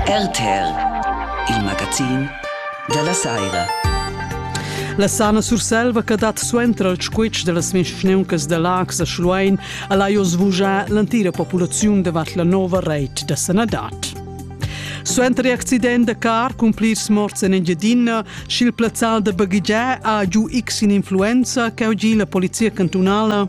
RTR, il magazin dalla saira. La Sana Surselva che dat suenter al squitsch dellas mischneuncas da Lax a Schluein al ha jo svugià l'antira populaziun davart la nova reit da sanadad. Suenter l'accident da car cun plirs morts en Engiadina, sch'il plazzal da baghegiar ha giu x influenza che ha gi la polizia cantunala,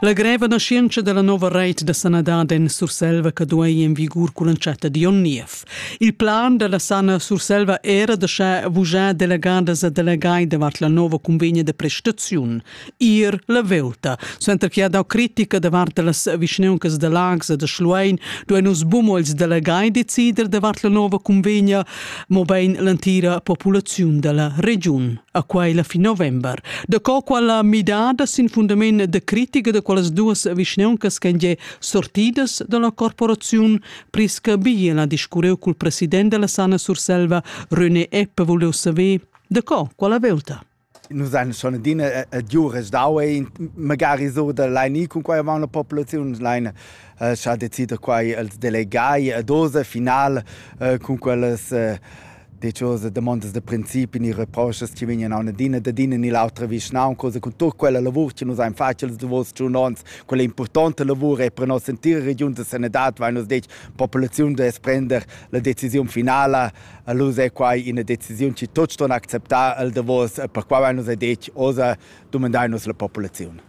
La greva naschientscha dalla nova reit da sanadad en Surselva che duei en vigur cull'entschatta di onn niev. Il plan dalla sana Surselva era da schar vugiar delegadas e delegai davart la nova convegna de prestaziun. Ir la velta. Suenter che ha dau critica davart las vischneuncas de Lags e de Schluein, duein nus bumo els delegai decider davart la nova convegna, mobein l'entira populaziun dalla regiun. a quai la fin november. Da co quella midada sin fundament da critica da quelles duas vischneuncas ch'en già sortidas da la corporaziun prisca bigli la discurreu cul president della Sana Surselva, René Eppe, volevo saber da co quella velta. Nus ein schon adina giures daue, magari so da leini cun quai avant la populaziun leine ha decida quai als delegai a dosa final cun quellas diciose domandas da principi ni reproschas chi vegnan a ün'adina dad ina ni l'autra vischnaun cosa cun tut quella lavur chi nus hain fat ils davos tschun ons quella importanta lavur e per nossa entira regiun da sanedad vain nus detg populaziun da sprender la decisiun finala allura è quai ina decisiun chi tuts ston acceptar al davos per qua vain nus detg oza dumandai nus la populaziun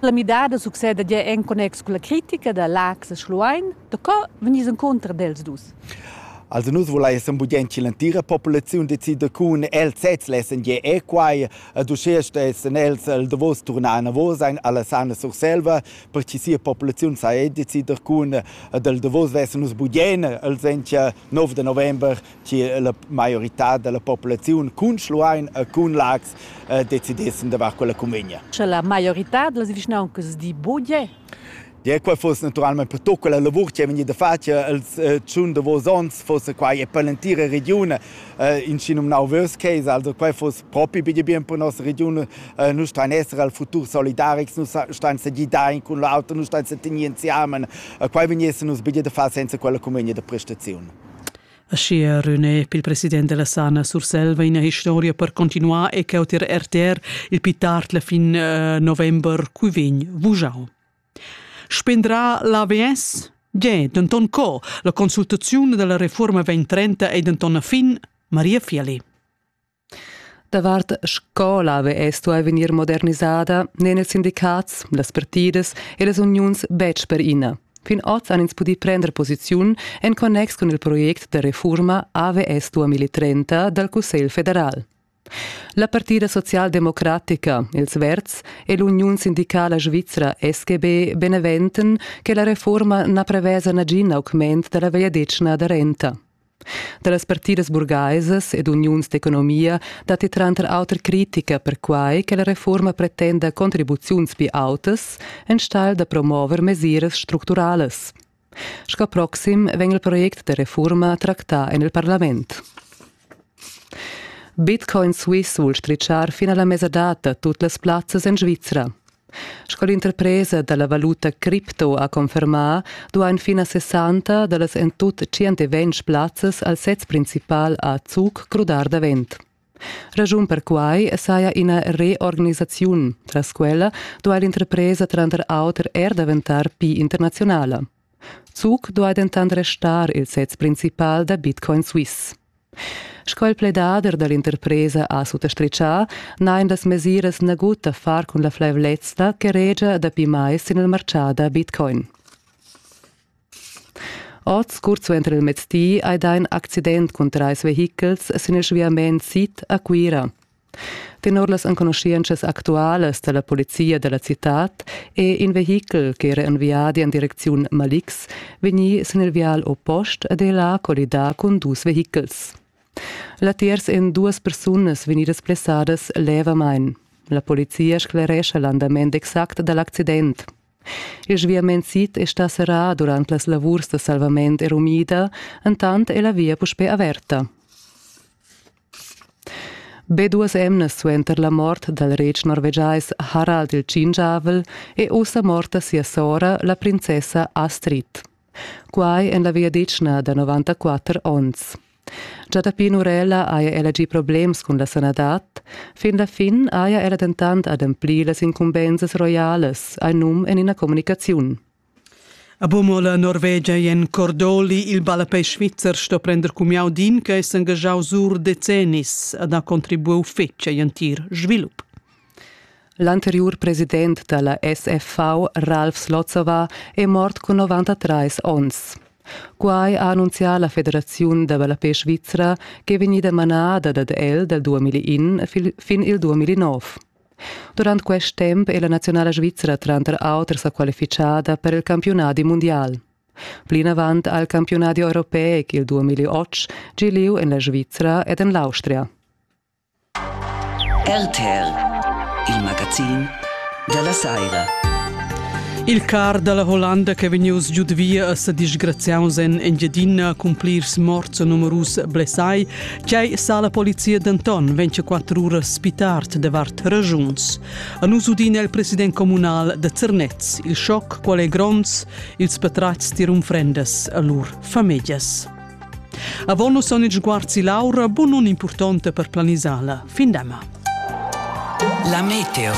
La midada succeda gia en connex cun la critica da Laax e Schluein. Da co vegnis encunter dels dus? Also nus volessem budient che l'entira populaziun decida cun els sezs lessen ge e quai ed uschè stessen els il davos turnar anavos alla sana Surselva per che sia populaziun sa decider cun del davos vessen nus budien il sentia 9 de november che la maioritad dalla populaziun cun Schluein e cun Laax eh, decidessen davart quella cunvegna. Sche la maioritad dalla vischnauncas di bugie? Ja, quei fuss naturalmein per tut quella lavur che è vegnida fatta els eh, tschun davos onns, fuss quai e per l'entira regione eh, in schinumnau Worst Case, also quei fuss propi bige bien per nossa regione, eh, nu stein essere al futur solidarics, nu stein se gidain cun l'auto, nu stein se tenir insiamen, eh, quei vegnesse nus bige da far senza quella cunvegna de prestaziun. Aschia René, il president della Sana Surselva, ina historia per continuar e cheu tier RTR il pi tard la fin eh, november cui vegn vujau. Spendrà l'AVS? Ge, denton co? La consultaziun della reforma vegn trenta e denton a fin Maria Fieli. Davart scola vess stuì vegnir modernisada n'èn ils sindicats, las partidas e las uniuns betg per ina. Fin oz han ins pudì prender posiziun en connex cun il project da refurma AVS 2030 dal Cussegl federal. La partida socialdemocratica, ils Verds, e l'uniun sindicala svizra SGB beneventen che la refurma na prevesa nagin augment da la vegliadetgna da renta. Da las partidas burgaisas ed uniuns d'economia datti tranter auter critica perquai che la reforma pretenda contribuziuns pli autas enstagl da promover mesiras structuralas. Sco proxim vegn il project da refurma tractà en il parlament. Bitcoin Swiss vul strichar fin a la mesadata tut las plazzas en Svizra. Sco l'interpresa da la valuta cripto ha confermà, duain fin a 60 da las en tut 120 plazzas al sez principal a Zug crudar davent. Ragiun per quai saja ina reorganisaziun. Tras quella duai l'interpresa tranter auter er daventar pli internaziunala. Zug duai dentant restar il sez principal da Bitcoin Suisse. Sco il pledader da l'interpresa ha suttastritgà, n'hain las mesiras nagut da far cun la flaivlezza che regia dapi mais sin il martgà da Bitcoin. Oz, curt suenter il mezdi, hai dà in accident cun trais vehichels sin il sviament sid a Cuira. Tenor las enconuschientschas actualas da la polizia da la citad è in vehichel ch'era en viadi en direcziun Malix vegnì sin il vial oppost ed è là collidà cun dus vehichels. Latiers èn duas persunas vegnidas blessadas levamain. La polizia sclerescha l'andament exact da l'accident. Il sviament sid è stà serrà durant las lavurs da salvament erumida, entant è la via puspè averta. Be duas emnas suenter la mort dal retg norvegiais Harald il Tschingiavel è ussa morta sia sora, la princessa Astrid. Quai en la vegliadetgna da 94 onns. Già dapi Nurella haja ella gì problems cun la sanadad, fin la fin haja ella dentant ademplì las incumbensas roialas, hai num en ina communicaziun. A Bumol a Norvegia ei en Cordoli il ballapei svizzer sto prender cumiau d'in che è s'engaschau sur decennis ad ha contribuiu fetg agl entir svilup. L'anteriur president dalla SFV, Ralf Slotsova, è mort cun 93 onns. Quai ha annunzià la Federaziun da ballapei svizra ch'è vegnida manada dad el dal 2001 fin il 2009. Durant quest temp è la naziunala svizra tranter auter sa qualifichada per il campiunadi mundial. Plinavant ha il campiunadi europeic il 2008 gi lieu en la Svizra ed en l'Austria. RTL, il magazin della Saira. Il car dalla Hollanda che è vegnius giud via a sa disgraziaus en Engiadina cun plirs morts e numerus blessai Quai sa la polizia denton 24 uras spitart davart ragiuns. A nus udina il president communal da Zernez. Il schoc qual è gronds, ils patratgs tirum frendas a lur famiglas. Avon nus son il sguarzi Laura, bun un importante per planisala. Fin dema. La meteo.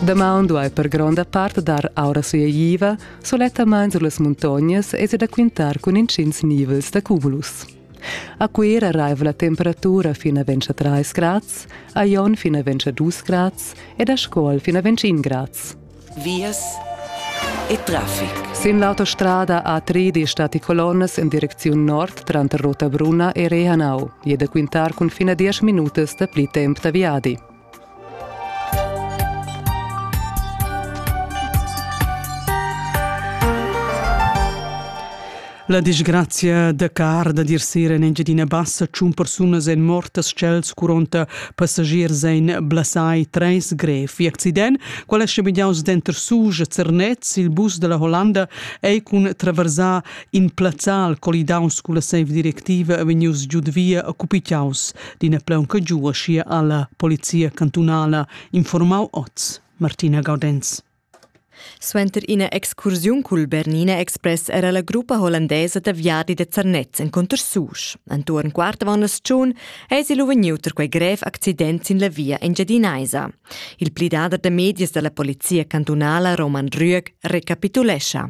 Damaun duai per gronda part dar aura sueiva, sulettamain sur las muntognas es da quintar cun intgins nivels da cumulus. A Cuera raiva la temperatura fin a ventscha 3 grads, a Jon fin a ventscha 2 grads ed a Scuol fin a ventscha 1 grads. Vias e traffic. Sin l'autostrada A3 stati colonnas in direcziun nord tranter Rotabruna e Rehanau. E da quintar cun fina 10 minutas da pli temp da viadi. La disgrazia da car da dir sera en Engiadina Bassa tschun persunas èn mortas ch'els curonta passagiers ein blasai treis grev. Il accident, qual è schabigliaus denter Suge e Zernez, il bus della Hollanda, ei cun traversar in plazzal colidaus culla seiv directiva vegnius giud via occupiaus d'ina plaunca giua schia alla polizia cantunala, informau oz Martina Gaudenz. Suenter ina excursiun cul Bernina Express era la gruppa hollandesa da viadi de Zernez encunter Susch. Entuorn quart avant asciun eisi lu vegniu per quei grev accident sin la via Engiadinaisa. Il plidader de medias dalla polizia cantunala Roman Rüeg recapitulescha.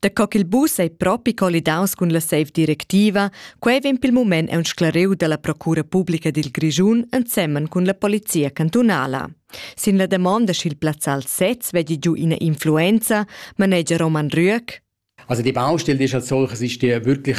Da co ch'il bus ei propi collidaus cun la seiv directiva, quei vegn pil mument aunc sclariu dalla procura publica dil Grischun ensemen cun la polizia cantunala. Sin la damonda sch'il plazzal sez vegli giu ina influenza, manegia Roman Rüeg. Also die Baustelle ist als solches ist die wirklich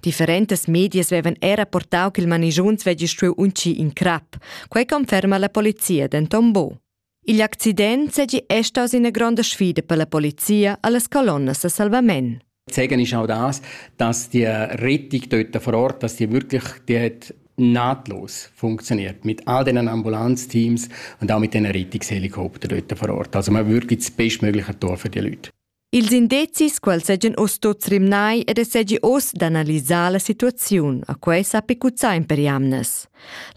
Differentas medias vevan era portau ch'il manigiuns vegli stuiu uncir in crap. Quei conferma la polizia denton bo. Igl accident segi è staus ina gronda sfida per la polizia allas colonnas a salvament. Zeigen ist auch das, dass die Rettung dort vor Ort, dass die wirklich dort nahtlos funktioniert mit all diesen Ambulanzteams und auch mit den Rettungshelikoptern dort vor Ort. Also man wirklich das bestmögliche Tor für die Leute. Ils indezis quels seigien uss tuts rimnai ed ei seigi uss d'analisar la situaziun, a quei sa picuzzar in per jamnas.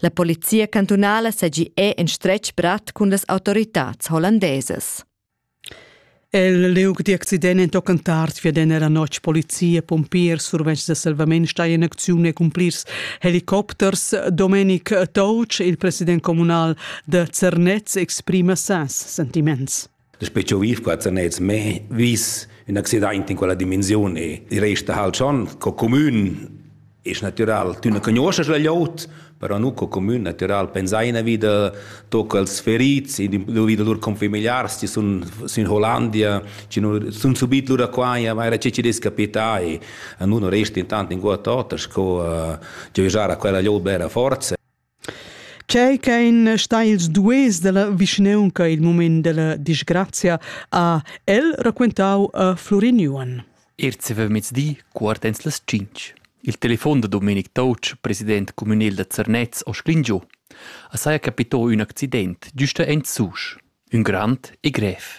La polizia cantunala seigi è en stretg brat cun las autoritads hollandesas. El liug d'accident en tochen tard viedan era notg polizia, pompiers, survetschs da salvament stai en acziun e cumplirs helicopters. Domenic Touch, il president communal da Zernez, exprima ses sentiments. Daspö ch'eu viv qua zanets mê vis ün accidaint in quella dimensiun e resta halt schon co cumün es natüral. Tü na cugnuoschast la glieud, però nu co cumün natüral. Pensaina vi da toc als ferits, vi da lur confamiliars chi sun sün Hollandia, chi nu sun subit lura qua e vaira che chi dess capità e nu nu resti intant inguott oter sco giöjar a quella glieud bella forza. Tgei ch'ein stai ils duers dalla vischnaunca il mument dalla disgrazia ha el raquentau a Florin Juan. Erz mezdi quart ens las tschintg. Il telefon da Domenic Touch, president communal da Zernez, ho sclingiu. A saja capitò ün accident, giusta en Susch. Ün grand e grev.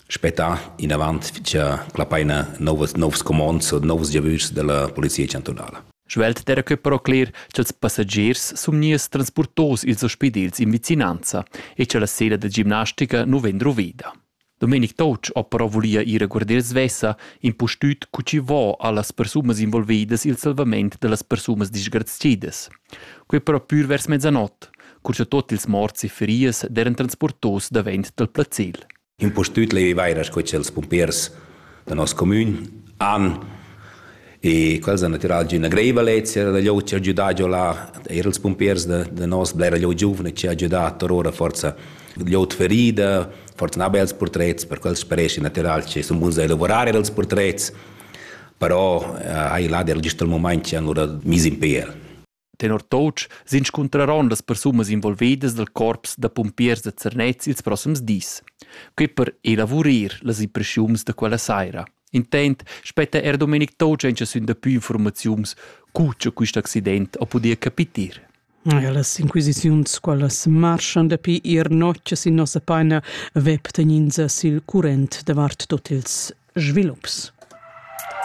spettà inavant fitcha la paina novas novs comands e novs giavüschs della polizia chantunala. Svelt era que però cler cha'ls passagiers sun gnieus transportos ils ospidels in vicinanza e cha la sera da gimnastica nu vegn druvida. Domenic Touch ho però vulia ir a guarder svessa, impustüt cu chi vo a las persunas involvidas il salvament da las persunas disgrazidas. Quei però pür vers mezzanot, cur cha tot ils morts e ferias deran transportos davent dal placel. impustüt leiva eir sco cha'ls pumpers da nos comün han e quels han natüral giü üna greiva lezia da lö chi ha giudà giò là, eir ils pumpers da, da nos blera lö giuvna chi ha giudà tar ora forza lö ferida, forsa na bels purtrets, per quels spareschi natüral chi sun buns da elaborar eir ils purtrets, però eh, hai là der gist il mumaint chi han lura mis in pel. Tenor Toutsch s'inscuntraron las persunas involvedas dal corps da pumpiers da Zernez ils proxims dis. Quei per elavurir las impressiuns da quella saira. Intent spetta er Domenic Toutsch encha sün dapü informaziuns cu cha quist accident ho pudì capitir. Ja, las inquisiziuns quellas marschan dapi ir notgs in nossa paina web tegnins sil current davart tot ils svilups.